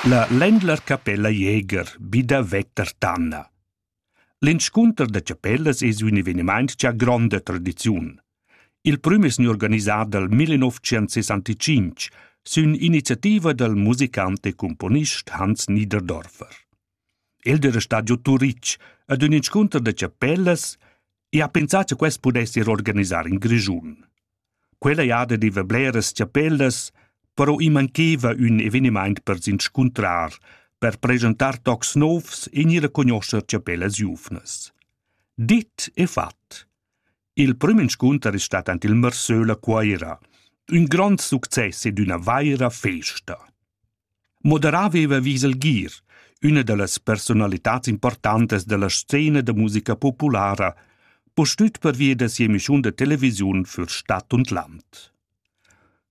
La Ländlerkapella Jäger bi da Vettertanna. L'inscunter da chapellas es ün evenimaint cha ha gronda tradiziun. Il prüm es gnü organisà dal 1965 sün iniziativa dal musicant e cumponist Hans Niederdorfer. El d'era stat giò Turitg ad ün inscunter da chapellas e ha pensà cha quest pudess ir organisar in Grischun. Quella jada deva bleras chapellas, però i mancheva ün evenimaint per s'inscuntrar, per presentar tocs novs e gnir a cugnoscher chapellas giuvnas. Dit e fat. Il prüm inscunter es stat ant il Mersöl a Cuaira. Ün grond success ed üna vaira festa. Moderà veva vis el gir, üna da las persunalitats importantas dalla scena da musica populara, pustüt pervia da sia emischiun da televisiun für Stadt und Land.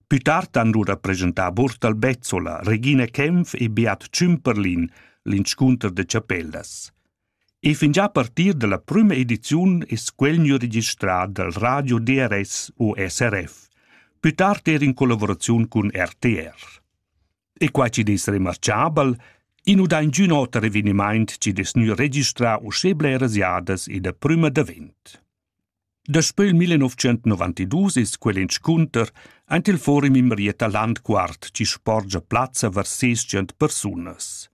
Più tard han lura presentà Burtal Bezzola, Regina Kempf e Beat Cümperlin l'inscunter de chapellas. E fingià a partir da la prüma ediziun es quel gnü registrà dal radio DRS o SRF, pü tard eir in collavuraziun cun RTR. E quai chi'd es remarchabel, i nu dà ingün oter evenimaint chi'd es gnü registrà uschè bleras jadas ed a prüma davent. Daspö il 1992 es quel inscunter aint il forum in Marietta Landquart chi sporgia plazza var ses tschient persunas.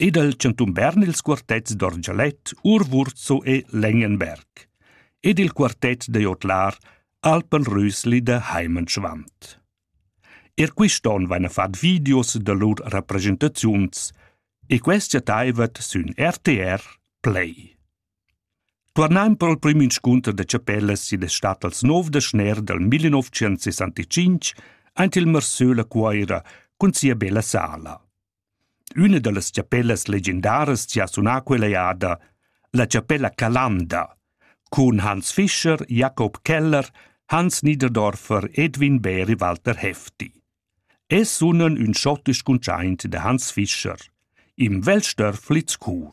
e dal chantun Bern ils quartets d'orgelet Urwurzo e Lengenberg ed il quartet da jodlar Alpenrüsli da Heimenschwand. Er quist'on vaina fat videos da lur representaziuns e quest chattaivat sün RTR Play. Tuornaim pro'l prüm inscunter da chapellas id es stat als nov da schner dal 1965 aint il Marsöla Cuoira cun sia bella sala. Üna da las chapellas legendaras chi ha sunà quella eada, la chapella Calanda, cun Hans Fischer, Jakob Keller, Hans Niederdorfer, Edwin Bär e Walter Hefti. Es sunan ün schottisch cuntschaint da Hans Fischer, im Weltstörflitz Chur.